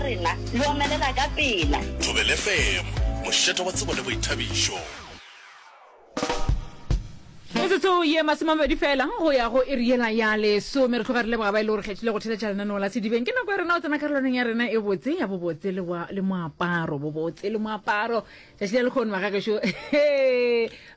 la rena le omelela ka pela. Thobele FM, mošeto wa tsebo le boithabišo. Metsotso ye masomamabedi fela go ya go iri yela ya lesome re tloga re leboga ba e le gore kgethile go theletša lenaneo la sedibeng ke nako ya rena o tsena karolwaneng ya rena e botse ya bobotse le moaparo bobotse le moaparo tšatši le lekgone ba gagešo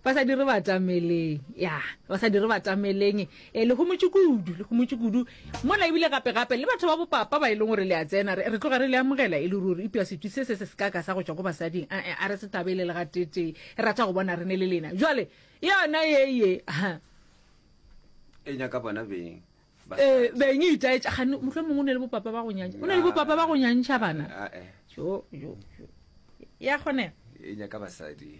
ba sa dire batameleng ya ba sa dire batameleng Ee, le homotše kudu, le homotše kudu. Mola ebile gape-gape le batho ba bopapa ba e leng gore le a tsena, re, re tloga re le amogela e le ruri, eupša setwi se se se sekaka sa go tšwa ko basading, a, a re se thabele le ga tee-tee. E rata go bona re ne le lena. Bjale, yona ye, ye, ha. E nyaka bona beng. E, beng e itaetša, gane, mohlomong o ne le bopapa ba go nyantša, o ne le bopapa ba go nyantša bana. Ae. Jo, jo, jo. Ya kgonega. E nyaka basadi.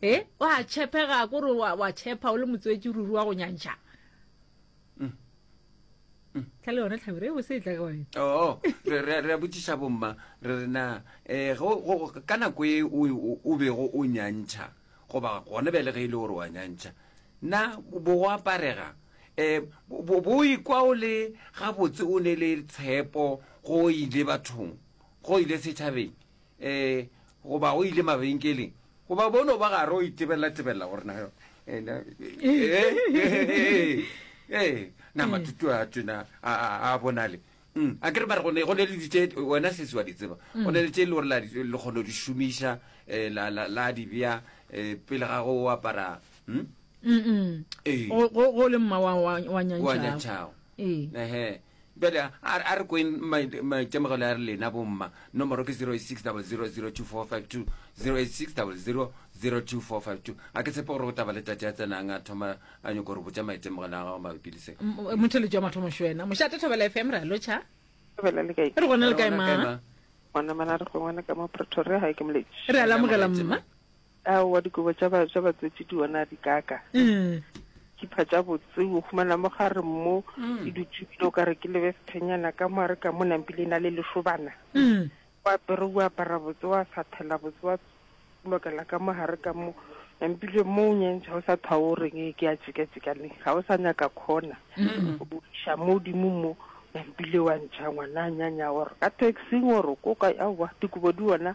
E, wa tšhepega kore wa, wa tšhepha o le motswetši ruri wa go nyantšha mm. mm. tla le yone tlhabire e bose e tla ka wena oo oh, re a botšiša bomma re re na um ka nako e o bego o nyantšha goba gone be le ge e le gore wa nyantšha na bo go aparega um bo ikwa o le gabotse o ne le tshepo go ile bathong go ile setšhabeng Ee, goba o ile mabenkeleng, goba bono ba gare o itebelela-tebelela gore na eh, na- eh, eh, eh, na matutu a tena a a- a bonale Mm, a ke re mare go ne go ne le ditše wena sese wa di tseba go ne le tše e le gore la di- le kgone go di šomiša eh, la- la la di bea eh, pele ga go o apara mm, Mm-mm. Ee. Go- go go le mma wa- wa wa wa nyantšhago nyantšhago ee ehe Bjale a re kweng maitemogelo a lena bomma. Nomoro ke 0860002452, 0860002452. Ga ke tshepe gore go taba le tate a tsenang a thoma a nyoko gore botša maitemogelo a gago mabapi le se. Motheletši wa mathomo šwena. Mošate Thobela FM re a lotšha. Thobela le kae? Re gona le kae ma? Gona mana re gongwana ka mo Pretoria, ga ke moletši. Re a lamogela mma. Aowa, dikobo tša ba, tša batswetši di ona di kaka. Dikhipa tša botse o humana mo gare mo e dutše bile o ka re ke lebe sephenyana ka mo a re ka mo nampile e na le lešobana. O apere o apara botse wa sathela botse wa lokela ka mo gare ka mo nampile mo o nyentšha o sa thwa o reng ke ya tšeka-tšeka le ga o sa nyaka khona o iša mo godimo mo nampile wa ntšha ngwana a nyanya gore ka taxing gore ko kae aowa dikobo di ona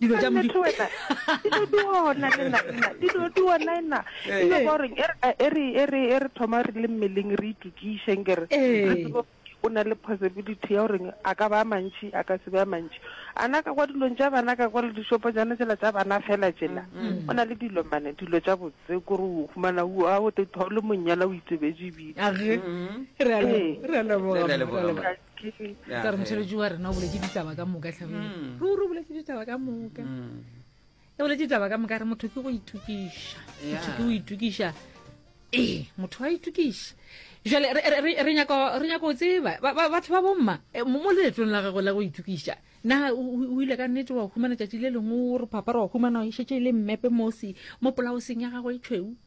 dilo tša modimo wena dilo di ona le nna nna dilo di ona nna e le gore e re e re e re e re thoma re le mmeleng re itukišeng ke re re tsebo o na le possibility ya gore a ka ba mantši a ka se ba mantši a na ka kwa dilong tša bana ka kwa le dishopo jana tsela tša bana fela tsela o na le dilo mane dilo tša botse kore o humana o a o tetho le monyana o itsebetse bile re a leboga ke ka re motheletši wa rena o boletse ditaba ka moka tlhabile Mm. ruri o boletse ditaba ka moka Mm. e boletse ditaba ka moka re motho ke go itukiša Yeah. motho ke go itukiša ee motho wa itukiša jale re- re- re- re nyaka re nyaka go tseba ba- ba- batho ba bomma eh, mo mo leetong la gago la go itukiša na o o- o ile ka nnete wa humana tšatši le lengwe o re phapara wa humana o šetse e le mmepe mosi mo polaoseng ya gago e tšhweu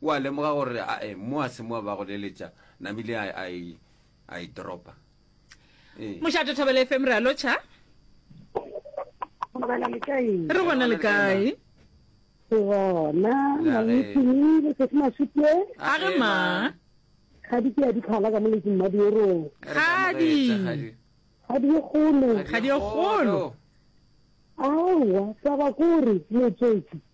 O a lemoga gore a e mo a se mo ba go leletša namile a a e a e dropa. E. Mošate Thabela FM re a lotšha. Thabela le kae? Re gona le kae? Ke gona. Na le tsini le se ma sutwe? A re ma. Ga di ke a di khala ka mo le tsini ma di ro. Ga di. Ga di golo. Ga di golo. Awa, taba kore motsotsi.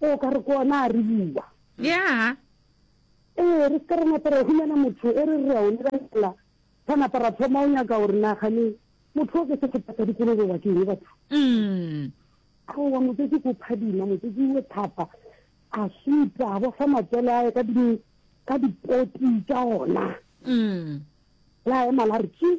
O ka re ko ona a re bua. Yaa. Ee, re se ka ra napa ra humana motho e re re a o lebelela, ra napa ra thoma o nyaka gore na gane motho o ke sehlopha sa dikolobe wa ke eng batho. Mm. Aowa, motsotsi ko phadima, motsotsi o thapa, a suta, a bofa matswele a ye ka di ka dipoti tša ona. Mm. La ema la re tšii.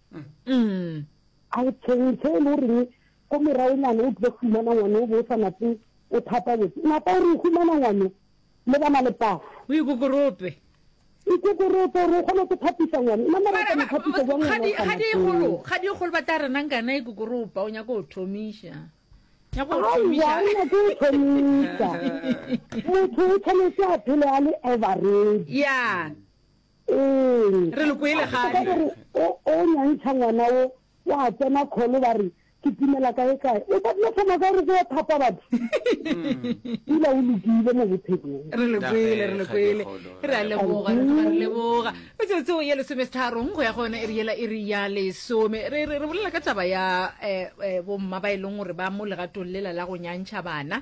A re theng tse e le goreng ko moragonyana o tlile fumana ngwane o bo o sa nape o thapa botse napa o re o fumana ngwane le bana le pasa o ikokorope ikokorope gore o kgone go thapisa ngwane nna mara ka mothapisa jwa ngwana o ga di golo ga di golo ba tla re nang kana ikokoropa o nyaka go thomisha nyaka go thomisha o nyaka go thomisha motho o tshwanetse a phele a le average yeah Ee. Re le kwele A tseba gale. gore o, o nyantšha ngwana wo, o a tsena kholo, ba re, Ke timela kaekae. O ka tla thoma kae re tlo yo thapa batho? Pula o lokile mo bophelong. Re le kwele, re le Nageng, kwele. kgakgekgolo, Re a ra leboga, re tloga re leboga. Metsotso ya lesomesitharong go ya go yona e re yela e re ya lesome. Re, re, re bolela ka taba ya eh, eh, bomma ba e leng gore ba mo legatong lela la go nyantšha bana.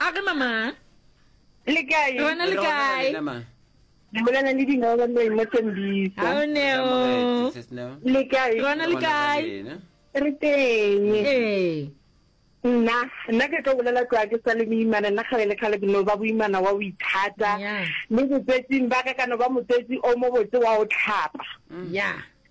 a re mama le kae rona le kae le bolela le dinao ba leng mo tembisa ha o ne o le kae rona le kae re teng ee nna nna ke tlo bolela tloa ke sa le boimana nna kgale le kgale ke no ba boimana wa o ithata le botsetsing ba ka ka no ba motswetsi o mo botse wa o tlhapa ya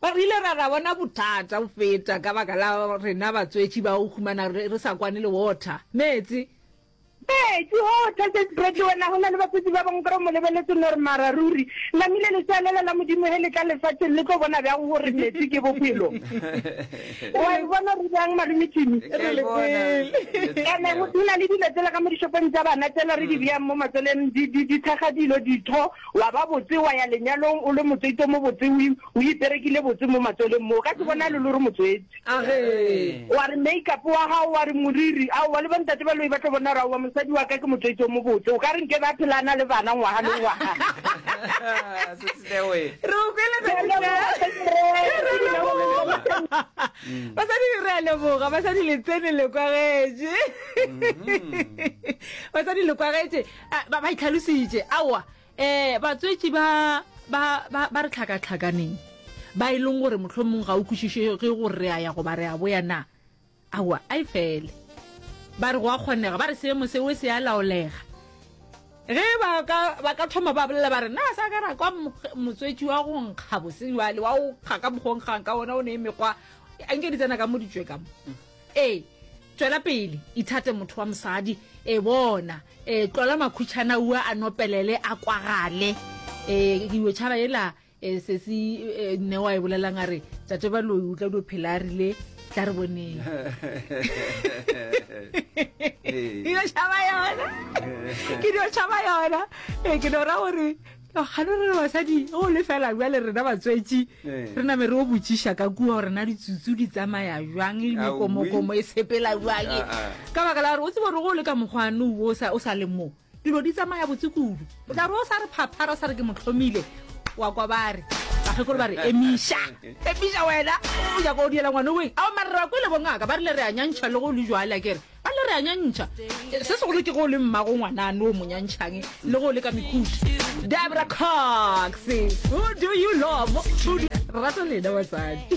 Ba rile, Ra, ra bona bothata go feta ka baka la rena batswetši ba go humana re, re sa kwane le Walter. Meetse. Meetse, oo, Thases Bradley, wena go na le batswetši ba bangwe ka go mo lebeletse nor mara ruri, namile letsea lela la Modimo ge le tla lefaseng le tlo bona bjang gore meetse ke bophelo. Wa e bona re bjang, Malome Timmy? Re le pele. Ene go na le dilo tsela ka mo dishopong tša bana tsela re di beyang mo matsweleng, di, di, di thakga dilo, ditho. Wa ba botse, wa ya lenyalong o le motswetso mo botse, o, o iperekile botse mo matsweleng mo. O ka se bonale lo re motswetsi. Agee. Wa re make-up wa gago, wa re moriri, aowa, le bontate ba loi ba tlo bona gore aowa, mosadi wa ka ke motswetsi o mobotse. O ka re nkabe a phela a na le bana ngwaga le ngwaga. Sister we. Re o kwele Ke a Sister. leboga, hle ke re, Re a ke na go le leboga. leboga. Basadi re a leboga. Basadi le tsene le kwagetše. Basadi le kwagetše. Eh, ba ba itlhalositše aowa um batswetši ba ba ba ba re tlhakatlhakaneng ba e leng gore mohlho mongwe ga o kwešišege gore re a ya goba re a boya na aowa a e fele ba re go a kgonega ba re seemo seo se a laolega ge ba ka ba ka thoma ba bolela ba re na sa ka ra kwa mo- motswetši wa go nkga boseng jale wa o kga ka mokgwa o nkgang ka ona o ne e mekgwa a nke di tsena ka mo ditswe ka mo Ee, tšwela pele, ithate motho wa mosadi. E bona, e tlola makhutšhana ua a nopelele a kwagale. E dio tšhaba yela e sesi e, nne wa e bolelang a re tate ba loi o tla dio phela a rile tla re boneng. Dio tšhaba yona. Ke dio tšhaba yona. E ke no ra gore Kgane re le basadi o le fela bjale rena batswetši re name re o botšiša ka kua gore na ditsutsu di tsamaya jwang le mekomokomo e sepela jwang ah, ah. ka baka la gore o tseba gore go le ka mokgwane o sa le mo dilo di tsamaya botse kudu o tla re o sa re phaphara o sa re ke motlhomile wa kwa ba re bakgekolo ba re emiša emiša wena o nyako o diela ngwane oeng ao marera kwele bongaka ba rile re a nyantšha le go le jwale a kere a le re a nyantšha se segolo ke go le mmago ngwanane o monyantšhang le go le ka mekhuši debra cox who do you love rato lena basadi